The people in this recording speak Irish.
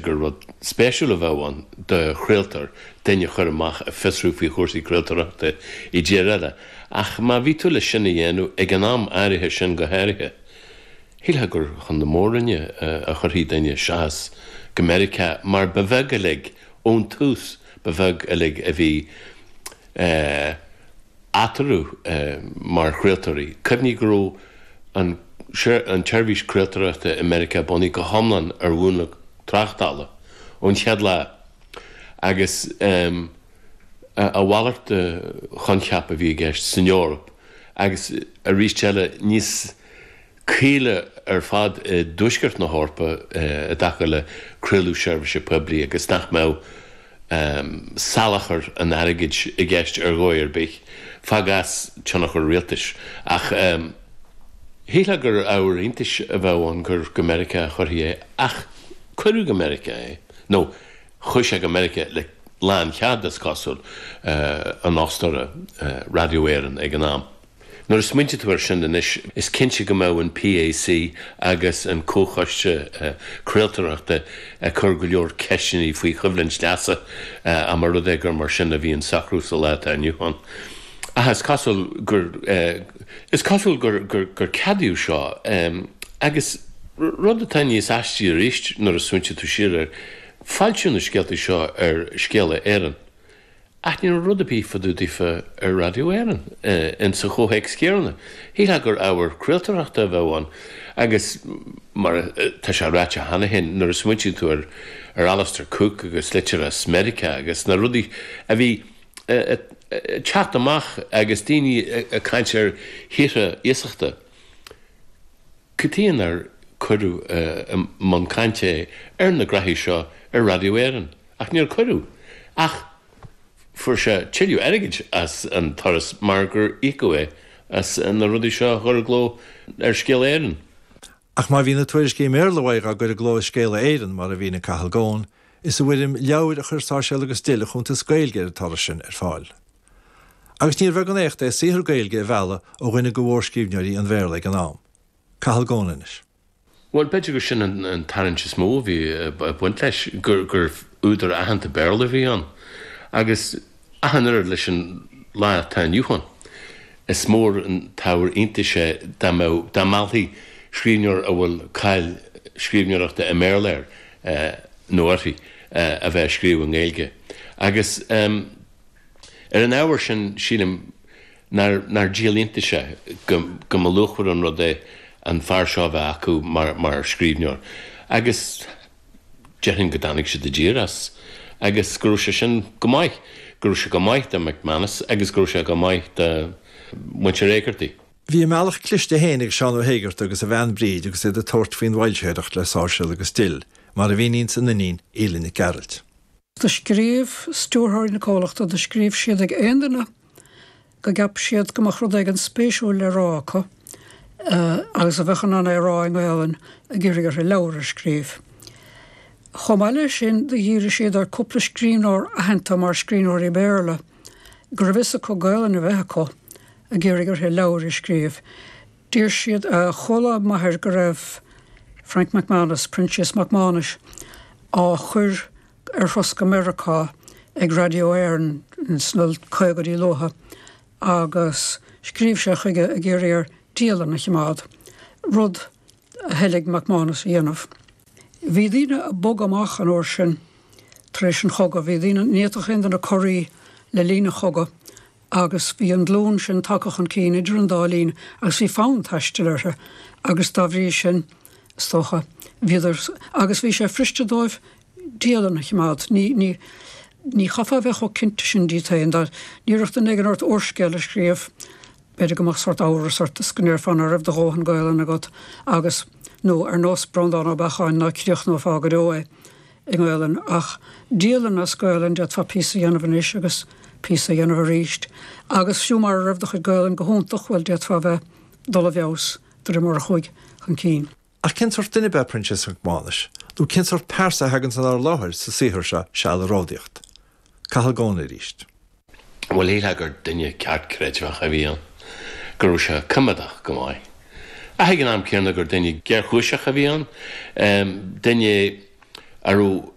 gur rud spéisiúil a bheadh ann do chraoltóir duine a chur amach ag fiosrú faoi chúrsaí craoltóireachta i dtír eile, ach má bhí tú leis sin a dhéanamh ag an am áirithe sin go háirithe, shílfeá gur chun na Mór-Roinne a chuirfí duine seachas go Meiriceá, mar ba bheag uilig, ón tús, ba bheag uilig a bhí. eatarthu mar chraoltóirí. Cuimhnigh go raibh an tseirbhís craoltóireachta i Meiriceá bunaithe go hiomlán ar mhúnla tráchtála ón chéad lá, agus a mhalairt de choincheap a bhí i gceist san Eoraip agus, arís eile, níos. caoile ar fad i dtuaisceart na hEorpa i dtaca le craoladh seirbhíse poiblí agus nach mbeadh salachar an airgid i gceist ar dhóigh ar bith, fág as tionchar rialtais. Ach shílfeá gur ábhar iontais a bheadh ann gur go Meiriceá a chuirfí é, ach cuireadh go Meiriceá é, nó chuaigh sé go Meiriceá le lánchead, is cosúil, an fhostóra, Radio Éireann, ag an am. Nuair a smaointigh tú ar sin anois, is cinnte go mbeadh an PAC agus an Comhchoiste Craoltoireachta ag cur go leor ceisteannaí faoi choimhlint leasa, dá mba rud é gur mar sin a bhí an socrú sa lá atá inniu ann. Ach is cosúil gur, is cosúil gur, gur, gur ceadaíodh seo. Agus rud atá níos aistí arís, nuair a smaointigh tú siar air, foilsíodh na scéaltaí seo ar Scéala Éireann. Ach ní rud ar bith fá dtaobh daofa ar Radio Éireann, in sa chomhthéacs chéanna, shílfeá gur ábhar craoltóireachta a bheadh ann, agus mar atá sé ráite cheana féin, nuair a smaointíonn tú ar Alistair Cooke agus litir as Meiriceá agus na rudaí a bhí ag teacht amach agus daoine ag caint ar thíortha iasachta, Cad chuige nár cuireadh i mbun cainte é ar na graithí seo ar Radio Éireann, ach níor cuireadh, ach fuair sé tuilleadh airgid as an turas mar gur íocadh é as na rudaí seo a chur i gcló ar Scéala Éireann. Ach má bhí na tuairiscí i mBéarla uaidh á gcur i gcló i Scéala Éireann, mar a mhínigh Cathal Goan, is i bhfoirm leabhair a chuir Sáirséal agus Dill a chuntas Gaeilge ar an turas sin ar fáil. Agus níor bheag an éacht é saothar Gaeilge a mhealladh ó dhuine de mhórscríbhneoirí an Bhéarla ag an am, Cathal Goan, anois. Bhuel, b'fhéidir gur sin an tarraingt is mó a bhí ag baint leis, gur údar aitheanta Béarla a bhí ann. Agus ach an oiread leis an lá atá inniu ann, is mór an t-ábhar iontais é dá mbeadh, dá meallfaí scríbhneoir a bhfuil cáil scríbhneoireachta i mBéarla air nó uirthi a bheith ag scríobh i nGaeilge. Agus. Ar an ábhar sin, sílim nár díol iontais é go mba luachmhar an rud é an fear seo a bheith acu mar scríbhneoir, agus déarfainn go dtáinig siad i dtír as, agus go raibh sé sin go maith. Go raibh sé go maith do McManus agus go raibh sé go maith do mhuintir Éigeartaigh. Bhí a mbealach cliste féin ag Seán Ó hÉigeartaigh agus a bhean Bríd agus iad ag tabhairt faoin bhfoilsitheoireacht le Sáirséal agus Dill, mar a mhíníonns a n-iníon Aoileann Nic Gearailt. Do scríobh stiúrthóirí na comhlachta, do scríobh siad ag aon duine go gceapadh siad go mbeadh rud éigin spéisiúil le rá acu, agus a bheadh in ann é a rá i nGaelainn, ag iarraidh orthu leabhar a scríobh. Chomh maith le sin, do dhírigh siad ar cúpla scríbhneoir aitheanta mar scríbhneoirí Béarla, go raibh fhios acu Gaelainn a bheith acu, ag iarraidh orthu leabhair a scríobh. D'iarr siad ar chuala m'athair go raibh Frank McManus, Proinsias Mac Mánais, á chur ar thuras go Meiriceá ag Radio Éireann sna caogaidí luatha agus scríobh sé chuige ag iarraidh air dialann a choimeád, rud a thoiligh McManus a dhéanamh. Bhí daoine ag bogadh amach an uair sin tar éis an chogaidh, bhí daoine, ní fhéadfadh aon duine corraí le linn an chogaidh agus bhí an glún sin tagtha chun cinn idir an dá linn agus bhí fonn taistil orthu agus dá bhrí sin, is dócha, bhíodar, agus bhí sé fuiriste dóibh dialann a choimeád. Ní, ní, ní chaithfeá a bheith chomh cinnte sin díot féin, dá n-iarrfadh duine éigin ort úrscéal a scríobh, b'fhéidir go mbeadh sórt amhras ort is go ndéarfá ná raibh do dhóthain Gaolainne agat agus, nó ar nós Breandán Ó Beacháin, ná críochnófá go deo é. i nGaolainn, ach dialann as Gaolainn, d'fhéadfá píosa a dhéanamh anois agus píosa a dhéanamh arís, agus fiú mara raibh do chuid Gaolainn go hiontach, bhuel, d'fhéadfá a bheith, dul i bhfeabhas, de réir mar a chuaigh chun cinn. Ach cén sórt duine ab ea Proinsias Mac Maghnais, nó cén sórt pearsa a thaganns inár láthair sa saothar seo, Seal ag Ródaíocht? Cathal Goan arís. Bhuel, shílfeá gur duine ceartchreidmheach a bhí ann, go raibh sé coimeádach go maith. Ach ag an am céanna gur duine géarchúiseach a bhí ann, duine a raibh.